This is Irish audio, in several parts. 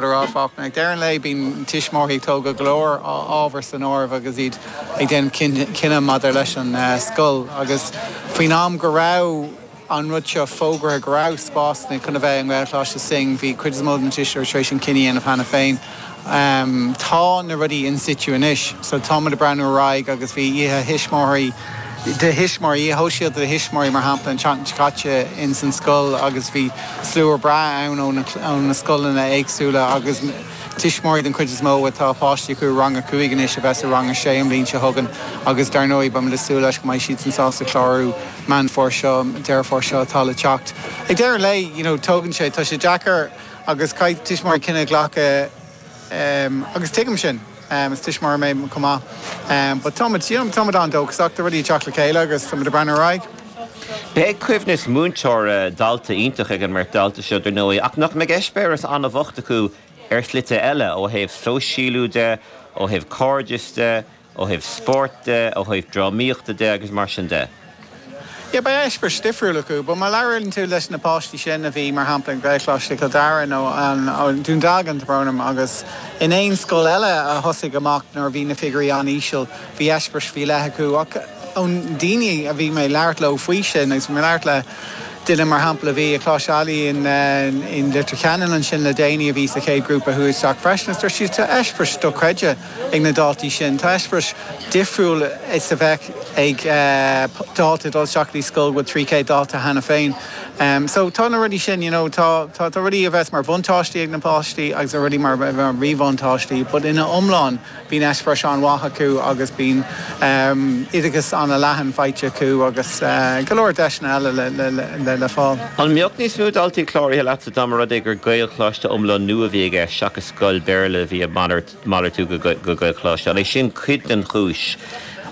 Lara Faulkner. Ag deireadh an lae, bíonn tuismitheoirí ag tógail go leor ábhar san áireamh agus iad ag déanamh cinneadh maidir leis an scoil agus faoin am go raibh an rud seo fógraithe go raibh spásanna chun a bheith i nGaelcholáiste Synge, bhí cuid is mó de na tuismitheoirí tar éis an cinneadh a dhéanamh cheana féin. Tá na rudaí in situ anois so táimid ag breathnú ar aghaidh agus bhí Oíche Thuismitheoirí, de thuismitheoirí, oíche shóisialta do thuismitheoirí, mar shampla, an tseachtain seo caite ins an scoil agus bhí slua breá ann ó na, ó na scoileanna éagsúla agus tuismitheoirí den chuid is mó atá páistí acu i rang a cúig anois a bheas i rang a sé an bhliain seo chugainn agus dar ndóigh beidh muid ag súil leis go mbeidh siadsan sásta clárú Meán Fómhair seo, Deireadh Fómhair seo atá le teacht. Ag deireadh an lae, you know, tógann sé, tá sé deacair agus caithfidh tuismitheoirí cinneadh a ghlacadh, Agus tuigim sin. Is tuismitheoir mé chomh maith. But táimid, you know, táimid an-dóchasach tá rudaí ag teacht le chéile agus táimid ag breathnú ar aghaidh. Beidh coibhneas múinteora, dalta iontach ag an mbeirt dalta seo, dar ndóigh, ach nach mbeidh eispéireas an-bhocht acu ar shlite eile, ó thaobh sóisialú de, ó thaobh cairdeas de, ó thaobh spóirt de, ó thaobh drámaíochta de agus mar sin de. Yeah, beidh eispéireas difriúil acu. But má labhraíonn tú leis na páistí sin a bhí, mar shampla, ag Gaelcholáiste Chill Dara nó Dún Dealgan, tá brón orm, agus in aon scoil eile a thosaigh amach nuair a bhí na figiúirí an-íseal, bhí eispéireas faoi leith acu. Ach ón daoine a bhí mé ag labhairt leo faoi sin, agus bhí mé ag labhairt le duine, mar shampla, a bhí i Coláiste Ailigh in Leitir Ceanainn ansin le déanaí a bhí sa chéad ghrúpa a chuaigh isteach freisin, is dúirt siad, tá eispéireas dochreidte. ag na daltaí sin. Tá eispéireas difriúil is a bheadh ag dalta ag dul isteach go dtí scoil a bhfuil 300 dalta cheana féin. So tá na rudaí sin, you know, tá tá rudaí a bheas mar bhuntáistí ag na páistí agus tá rudaí mar mhíbhuntáistí but ina iomlán bíonn eispéireas an-mhaith acu agus bíonn oideachas an-leathan faighte acu agus go leor deiseanna eile le fáil. An mbeadh níos mó daltaí cláraithe leatsa dá mba rud é gur Gaelcholáiste iomlán nua a bhí i gceist seachas scoil Béarla a bhí ag malairt Malartú go Gaelcholáiste. An é sin cuid den chúis?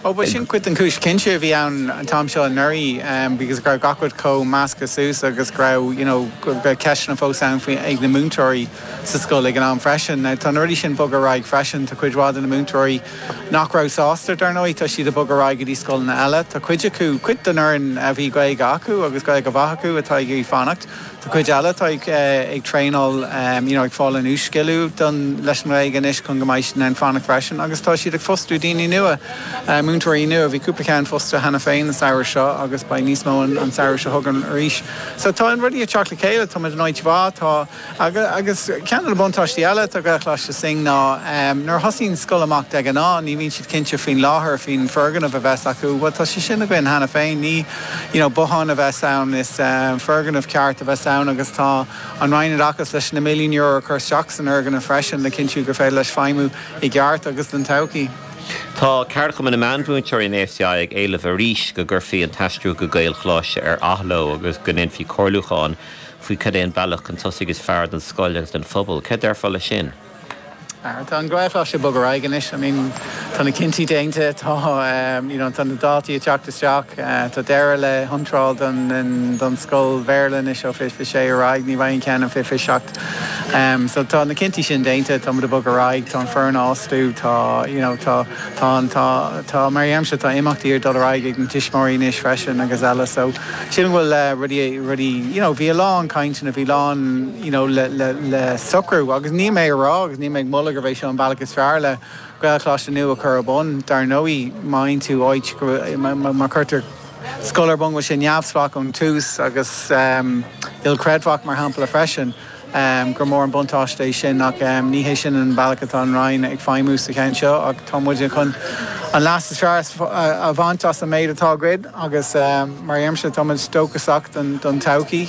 Ó ba sin cuid den chúis cinnte a bhí ann an t-am seo anuraidh because go raibh gach rud chomh measctha suas agus go raibh you know go raibh ceisteanna fós ann faoi ag na múinteoirí sa scoil ag an am freisin. Now tá na rudaí sin ag bogadh ar aghaidh freisin. Tá cuid mhaith de na múinteoirí nach raibh sásta dar ndóigh tá siad ag bogadh ar aghaidh go dtí scoileanna eile. Tá cuid acu, cuid den fhoireann a bhí Gaeilge acu agus Gaeilge mhaith acu atá ag iarraidh fanacht. Tá cuid eile atá ag traenáil, you know ag fáil a n-uas-sciliú don, leis an nGaeilge anois chun go mbeidh siad in ann fanacht freisin agus tá siad ag fostú daoine nua, múinteoirí nua, bhí cúpla ceann fostaithe cheana féin an samhradh seo agus beidh níos mó an samhradh seo chugainn arís. So tá rudaí ag teacht le chéile, táimid in áit mhaith, tá, agus ceann de na buntáistí eile atá ag Gaelcholáiste Synge ná nuair a thosaíonn scoil amach de ghnáth ní bhíonn siad cinnte faoin láthair, faoin bhfoirgneamh a bheas acu, bhuel tá sé sin againn cheana féin, ní. you know, bothán a bheas ann, is foirgneamh ceart a bheas ann agus tá an Roinn Oideachais leis na milliúin euro a chur isteach san fhoirgneamh freisin le cinntiú gur féidir leis feidhmiú i gceart agus don todhchaí. Tá Ceardchumann na Meánmhúinteoirí, an ASTI, ag éileamh arís go gcuirfí an t-aistriú go Gaelcholáiste ar athló agus go ndéanfaí comhairliúchán faoi cad é an bealach chun tosaigh is fearr don scoil agus don phobal. Céard déarfá leis sin? Tá an Gaelcholáiste ag bogadh ar aghaidh anois. I mean tá na cinntí déanta, tá you know tá na dátaí ag teacht isteach, tá deireadh le hiontráil don scoil Bhéarla anois ó fiche a sé ar aghaidh, ní bheidh an ceann ó fiche a seacht. So tá na cinntí sin déanta, tá muid ag bogadh ar aghaidh, tá an foireann á fhostú, tá you know tá tá tá tá mar a dheirimse tá imeachtaí ag dul ar aghaidh ag na tuismitheoirí anois freisin agus eile so sílim go bhfuil rudaí rudaí you know bhí a lán cainteanna, bhí lán you know, le, le, le socrú. Agus níl mé ag rá agus níl mé ag moladh gurb é seo an bealach is fearr le Gaelcholáiste nua a chur ar bun. Dar ndóigh, má fhaigheann tú áit go, má, má, má chuirtear scoil ar bun go bhfuil sé neamhspleách ón tús agus, em, ilchreidmheach, mar shampla, freisin, em, gur mór an buntáiste é sin ach, em, ní hé sin an bealach atá an Roinn ag feidhmiú sa cheann seo ach tá muide chun an leas is fearr a bhaint as an méid atá againn agus, em, mar a dheirimse, tá muid dóchasach don, don todhchaí.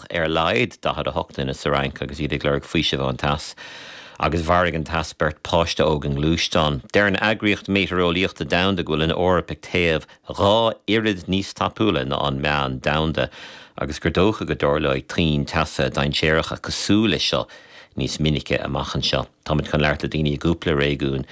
ar a laghad 48 duine sa Fhrainc agus iad ag lorg faoisimh ón teas, agus mharaigh an teas beirt páiste óg i ngluaisteán. Deir an Eagraíocht Meitéareolaíochta Domhanda go bhfuil an Eoraip ag téamh dhá oiread níos tapúla ná an meán domhanda agus gur dócha go dtarlóidh tonnta teasa dainséaracha cosúil leis seo níos minice amach anseo. Táimid chun labhairt le daoine i gcúpla réigiún